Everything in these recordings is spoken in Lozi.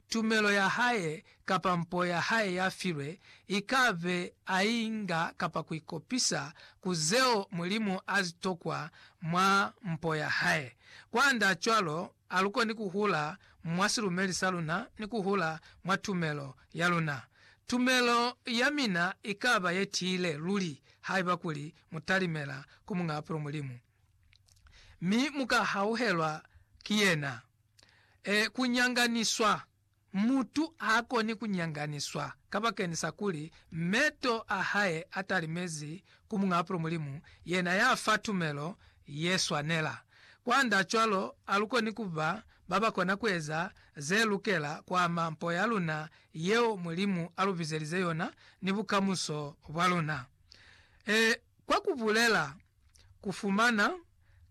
tumelo ya hae kapa mpo ya hae ya filwe i ka be a i nga kapa ku ikopisa ku zeo Mulimu a zi tokwa mwa mpo ya hae. Kwand'a cwalo, a lu koni ku hula mwa silumeli sa luna ni ku hula mwa tumelo ya luna. Tumelo ya mina i ka ba ye tiile luli haiba kuli mu talimela ku Muñ'a Apulo Mulimu, mi mu ka hauhelwa ki yena. e kunyanganiswa. Mutu haakoni kunyanganiswa kabakeni sa kuli meto a hae atalimezi ku Muñ'a Apulo Mulimu, yena yafa tumelo yeswanela. Kwanda cwalo, alukoni kuba babakona kueza zelukela kwaama mpo yaluna yeo Mulimu alubizelize yona ni bukamuso bwaluna. E, kwa kubulela kufumana,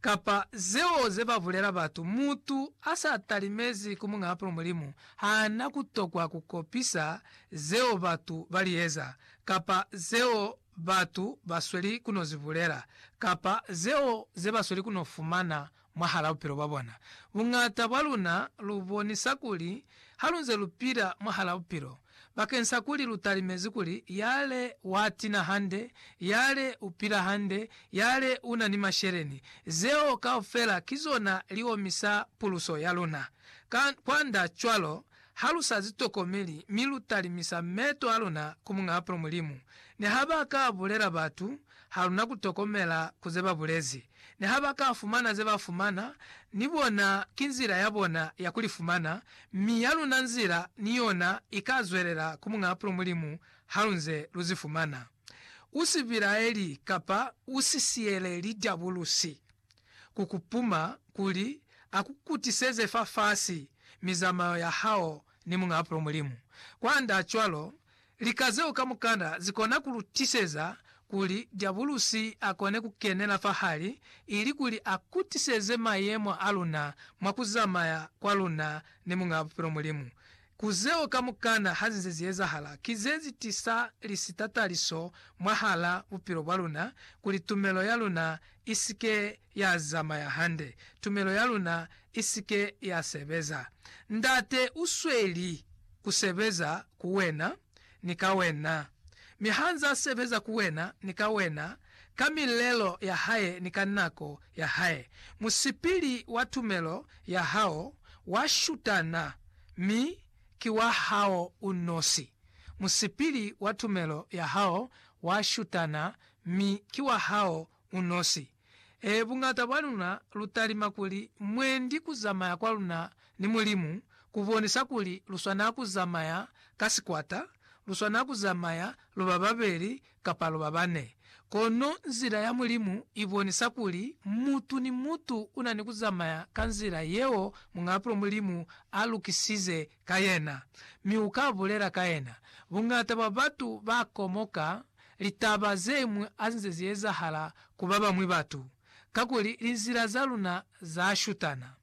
kapa zeo zebabulela batu, mutu asa talimezi ku Muñaa Pulu Mulimu haana kutokwa kukopisa zeo batu balieza, kapa zeo batu basweli kunozibulela, kapa zeo zebasweli kunofumana Mwahal'a bupilo bwa bona, buñata bwa luna lu bonisa kuli ha lu nze lu pila mwahal'a bupilo bakeng sa kuli lu talimezi kuli yale wa tina hande, yale u pila hande, yale u na ni masheleni. Zeo kaufela ki zona li omisa puluso ya luna. Ka kwand'a cwalo, ha lu sa zi tokomeli mi lu talimisa meto a luna ku Muñ'a Bupilo Mulimu, ni ha ba ka bulela batu Haluna kutokomela ku ze babulezi. Niha baka fumana ze ba fumana, ni bona ki nzila ya bona ya ku li fumana, mi ya luna nzila ni yona ika zwelela ku Muñaa Pulo Mulimu halunze lu zi fumana. U si bilaeli kapa u si siyeleli Diabulusi ku ku puma kuli a ku kutiseze fafasi mizamayo ya hao ni Muñaa Pulo Mulimu. Kwand'a cwalo, Lika zeo kamukana zikona kulutiseza kuli Diabulusi akone kukenela fahali ilikuli akutiseze mayemo aluna mwa kuzamaya kwaluna ni Muñaa Bupilo Mulimu. Ku zeo kamukana hazinze ziezahala, ki zezitisa lisitataliso mwahala bupilo bwaluna kuli tumelo yaluna isike ya zamaya hande, tumelo ya luna i si ke ya sebeza. Ndate u sweli ku sebeza ku wena ni ka wena. Mi ha nz'a sebeza ku wena ni ka wena, ka milelo ya hae ni ka nako ya hae, musipili wa tumelo ya hao wa shutana mi ki wa hao u nosi. Musipili wa tumelo ya hao wa shutana mi ki wa hao unosi. Ee, buñata bwa luna lu talima kuli mwendi ku zamaya kwa luna ni Mulimu ku bonisa kuli lu swana ku zamaya ka sikwata, lu swana ku zamaya lu ba babeli kapa lu ba bane. Kono nzila ya Mulimu i bonisa kuli mutu ni mutu u na ni ku zamaya ka nzila yeo Muñaapulo Mulimu a lukisize ka yena, mi uka bulela ka yena. Bungata bwa batu ba komoka litaba zeñwi hazinze ziezahala ku babañwi batu, kakuli linzila za luna za shutana.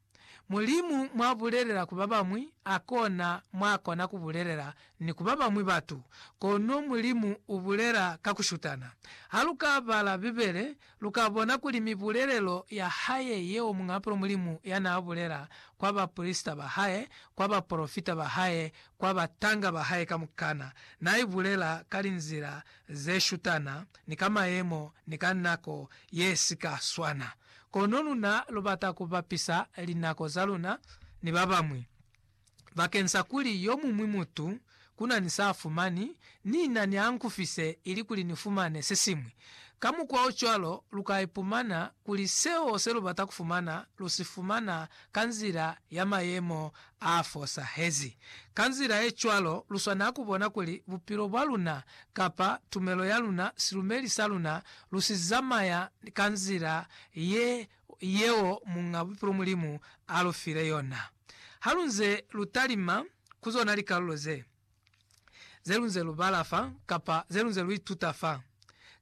Mulimu mwa bulelela ku babañwi, hakona mwa kona ku bulelela ni ku babañwi batu. Kono Mulimu u bulela ka ku shutana. Ha lu ka bala Bibele, Lu ka bona kuli mibulelelo ya hae yeo Muñ'apolo Mulimu ya n'a bulela kwa baprisita ba hae, kwa bapolofita ba hae, kwa batanga ba hae kamukana, n'a i bulela ka linzila ze shutana, ni ka mayemo, ni ka nako ye si ka swana. Kono luna lu bata ku bapisa linako za luna ni ba bañwi. bakeng sa kuli yo muñwi mutu ku na ni sa a fumani, ni na ni a nkufise ili kuli ni fumane se siñwi. Ka mukwa o cwalo, lu ka ipumana kuli seo se lu bata ku fumana lu si fumana ka nzila ya mayemo a fosahezi. Ka nzila ye cwalo, lu swanela ku bona kuli bupilo bwa luna kapa tumelo ya luna, silumeli sa luna, lu si zamaya ka nzila ye yeo Muñ'a Bupilo Mulimu a lu file yona. Ha lu nze lu talima ku zona likalulo ze, ze lu nze lu bala fa kapa ze lu nze lu ituta fa,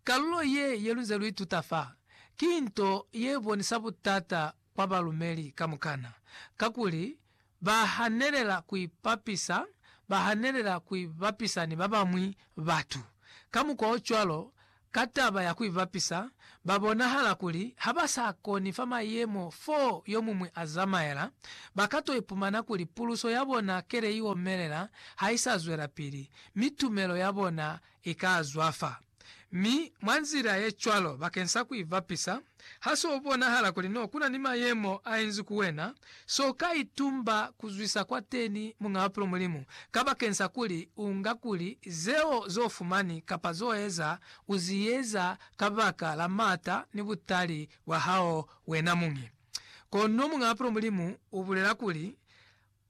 kalulo ye ye lu nze lu ituta fa ki nto ye bonisa butata kwa balumeli kamukana, kakuli ba hanelela ku ipapisa, ba hanelela ku ibapisa ni ba bañwi batu. Ka mukwa o cwalo, Ka taba ya ku ibapisa, ba bonahala kuli ha ba sa koni fa mayemo fo yo muñwi a zamaela, ba ka to ipumana kuli puluso ya bona kele i omelela ha i sa zwelapili, mi tumelo ya bona i ka zwafa. Mi, mwa nzila ye cwalo, bakeng sa ku ibapisa, Ha s'o bonahala kuli n'o kuna ni mayemo a inzi ku wena, s'o ka itumba ku zwisa kwateni Muñ'a Bupilo Mulimu kabakensa kuli u nga kuli zeo z'o fumani kapa z'o eza u zi eza kabaka la m'ata ni butali bwa hao wena muñi. Kono Muñ'a Bupilo Mulimu u bulela kuli,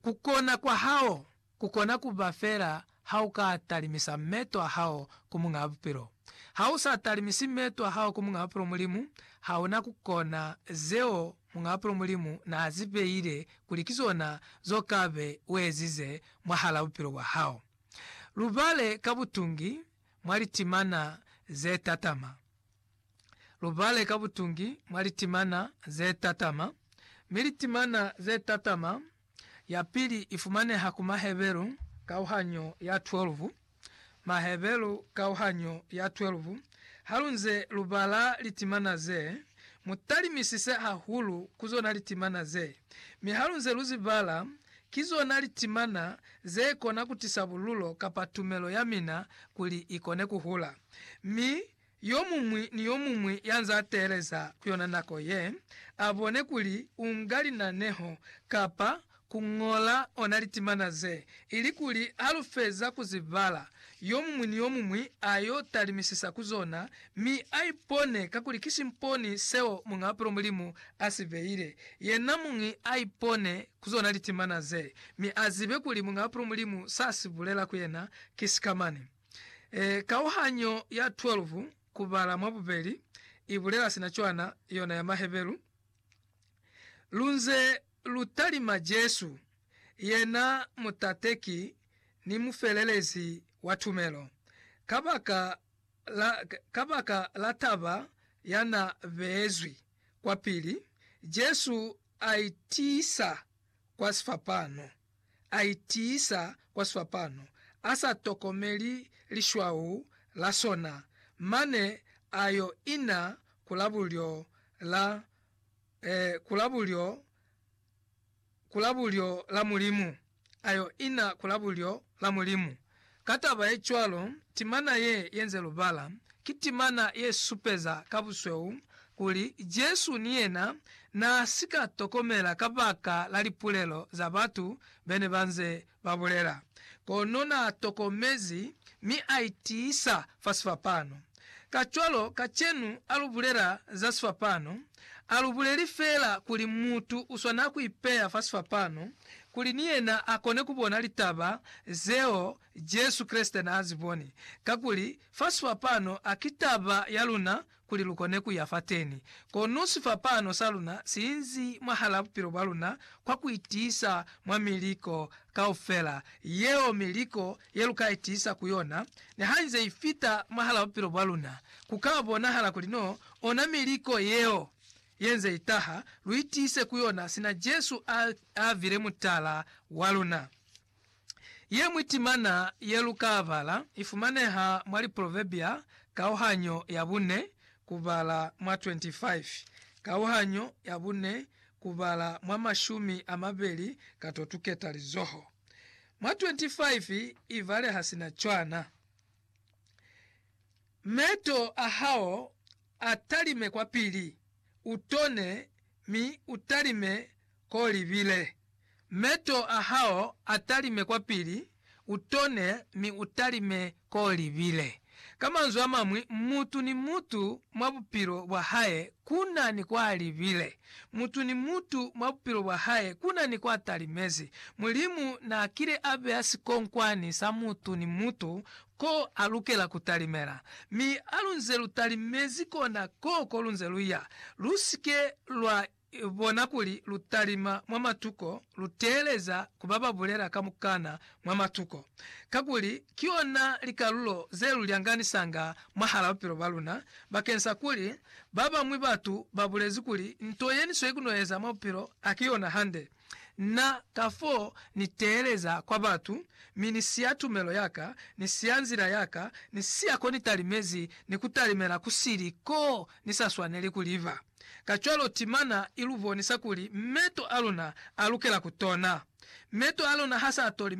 Kukona kwa hao kukona kuba feela hauka talimisa meeto ahao ku Muñaa Bupilo. Hausa talimisi meeto ahao ku Muñaa Bupilo Mulimu, hauna kukona zeo Muñaa Bupilo Mulimu naazibeile kuli ki zona zokabe uezize mwahalaa bupilo bwahao. Lubale ka butungi mwa litimana zetatama. lubale ka butungi mwa litimana zetatama, mi litimana zetatama yapili ifumaneha ku Maheberu kauhanyo ya 12. Maheberu kauhanyo ya 12 Halunze lubala litimana ze, mutalimisise hahulu ku zona litimana ze, mi halunze luzibala, ki zona litimana zekona kutisa bululo kapa tumelo yamina kuli ikone kuhula. Mi Yomuñwi ni yomuñwi ya nz'a teeleza ku yona nako ye, a bone kuli u nga linaneho kapa ku ñola ona litimana ze, ilikuli ha lu feza ku zi bala, yomuñwi ni yomuñwi a yo talimisisa ku zona mi a ipone ka kuli ki simponi seo Muñ'a Bupilo Mulimu a si beile. Yena muñi a ipone ku zona litimana ze, mi a zibe kuli Muñ'a Bupilo Mulimu s'a si bulela ku yena ki sikamani. E, kauhanyo ya 12 ku bala mwa bubeli i bulela sina cwana, yona ya Maheberu, Lu nze lu talima Jesu, yena mutateki ni mufelelezi wa tumelo, kabaka la, kabaka la taba ya na beezwi kwapili, Jesu a itiisa kwa sifapano. a itiisa kwa swapano, a sa tokomeli lishwau la sona, mane a yo ina ku la bulyo la, eh, ku la bulyo, ku la bulyo la Mulimu, a yo ina ku la bulyo la Mulimu. Ka taba ye cwalo, timana ye yenze lubala ki timana ye supeza ka busweu kuli Jesu ni yena naa si ka tokomela kabaka la lipulelo za batu be ne ba nze ba bulela. Kono naa tokomezi mi a itiisa fa sifapano. Kacwalo, kacenu ha lu bulela za sifapano, ha lu buleli feela kuli mutu u swanela ku ipeya fa sifapano kuli ni yena a kone ku bona litaba zeo Jesu Kreste n'a zi boni. Kakuli, fa sifapano ha ki taba ya luna kuli lu kone ku ya fateni. Kono sifapano sa luna si inzi mwahal'a bupilo bwa luna kwa ku itiisa mwa miliko kaufela yeo, miliko ye lu ka itiisa ku yona, ni ha i nze i fita mwahal'a bupilo bwa luna, ku ka bonahala kuli no ona miliko yeo ye nze i taha lu itiise ku yona sina Jesu a, a vile mutala wa luna. Ye ñwi timana ye lu ka bala i fumaneha mwa Liproverbia kauhanyo ya bune kubala mwa 25, kauhanyo ya bune kubala mwa mashumi a mabeli ka to tuketa lizoho. Mwa 25 ibale ha si na cwana. Meto a hao a talime kwa pili, u tone, mi u talime k'o libile. Meto a hao a talime kwa pili, u tone, mi u talime Ko libile. Ka manzwi a mañwi, mutu ni mutu mwa bupilo bwa hae ku na ni kwa libile. Mutu ni mutu mwa bupilo bwa hae ku na ni kwa talimezi. Mulimu n'a kile a beya sikonkwani sa mutu ni mutu ko a lukela ku talimela. Mi ha lu nze lu talimezi kona koo ko lu nze lu ya. Lu si ke lwa bona kuli lu talima mwa matuko, lu teeleza ku ba ba bulela kamukana mwa matuko, kakuli ki yona likalulo ze lu lyanganisanga mwahal'a bupilo bwa luna, bakeng sa kuli ba bañwi batu ba bulezi kuli nto ye ni sweli ku no eza mwa bupilo ha ki yona hande. Na, kafoo, ni teeleza kwa batu, mi ni siya tumelo ya ka, ni siya nzila ya ka, ni siya ko ni talimezi, ni ku talimela ku sili koo ni sa swaneli ku liba. Kacwalo timana i lu bonisa kuli meto a luna a lukela ku tona. Meto a luna ha s'a toli